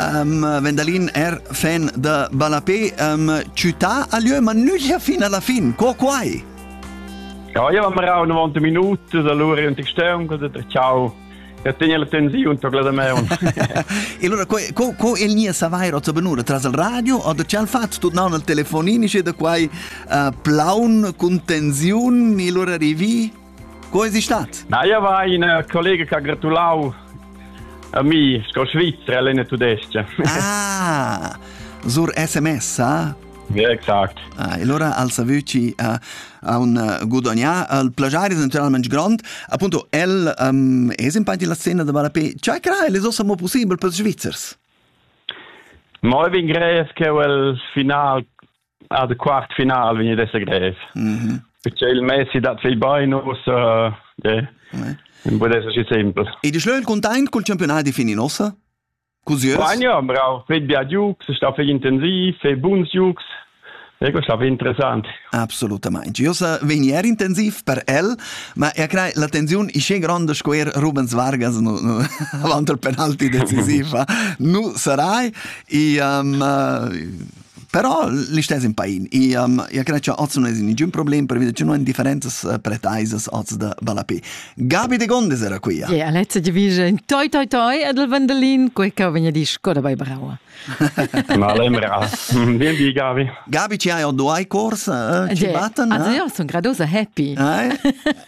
Um, Vendalin er fan da ballapé um, città a lieu, ma nüglia fin alla fin. Co quai? Ja, io am rau 90 minuti allora in textern, cosa da ciao. Ja tenia la tensiun tocla da me. e allora co, co, co il nia savair ozza benura tras il radio o da cial fat tut naun al telefonini e da quai uh, plaun cun tensiun e allora rivi? Co es stat? Na, io va in collega che ha gratulau a mi sco Svizzera all'Ene Tudesca. Ah, sur SMS, ah? Ja, exakt. Ah, allora al savuci a, a un uh, gudagnà al plagiare naturalmente grande appunto el um, è in parte la scena da Barapé cioè crai le ossa mo possibile per Svizzers Ma vin grees che il final Ah, de quart final vegn ad esser grev. Mm -hmm. Perché il Messi dat viel bein us uh, yeah. ouais. Bude eso si simpel. E de schlöl content col campionat di fini nossa? Così Ja, bravo. Feit bia giugs, sta fei intensiv, fei buns giugs. E questo è interessante. Assolutamente. Io sa venier intensiv per el, ma io credo la tensione è così grande square Rubens Vargas avanti al penalti decisiva non sarai e um, Però listess in pain. E um, ia cred che oz non es nigün problem pervida che non en differenzas uh, pretaisas oz da Ballapé. Gabi de Gondes era qui. Ja, yeah, Alezza di vige in toi toi toi ed il Vandalin, quei che vegna di Skoda bei Brava. Male brava. Vien di Gabi. Gabi ci hai due corsi uh, ci batten. Ah, io sono gradosa happy. Eh?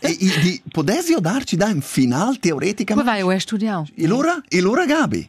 e, e, di, podessi darci da in final teoretica? Come vai a studiare? E lura? E lura Gabi?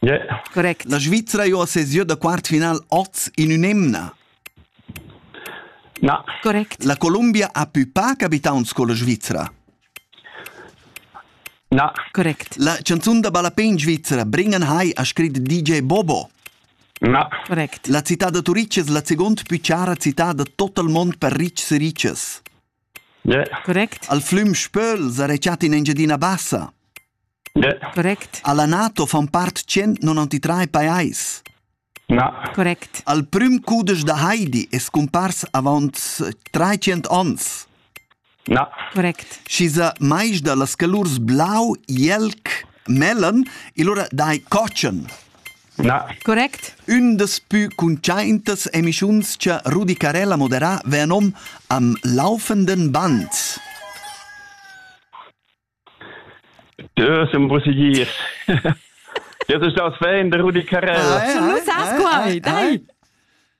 Yeah. Correct. La Svizra ha sesiu da quartfinal oz in un'emna. Na. Correct. La Columbia ha più paga abitants con la Svizra. Na. Correct. La canzun da ballapè in Svizra, Bringen Hai, ha scrit DJ Bobo. Na. Correct. La città da Turitg è la seconda più cara città da tot il mondo per ricchs e ricches. Correct. Al flüm Spöl s'era chat in Engiadina Bassa. Correct. Alla NATO fan part 193 pajais. Na. Correct. Al prüm cudesch da Heidi es cumpars avaunt 300 ons. Na. Correct. Schi sa mais da las calurs blau, jelc, mellen, il ora dai cotschen. Na. Correct. Ün daspü cuntschaintas emischuns cha Rudicarella moderà vea nom am laufenden Band. Ja, siamo possibili. Jetzt ist das Fan, der Rudi Carrera. Schon los, hast quai, dai!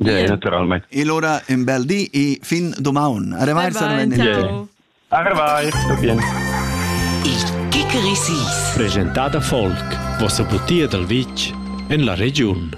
Yeah, naturalmente. Il ora un bel di e fin domani. Arrivai, Bye bye, ciao. Arrivai, tutto bien. Il Kickerisis. Presentà da Folk, vossa butia dal vitg en la regiun.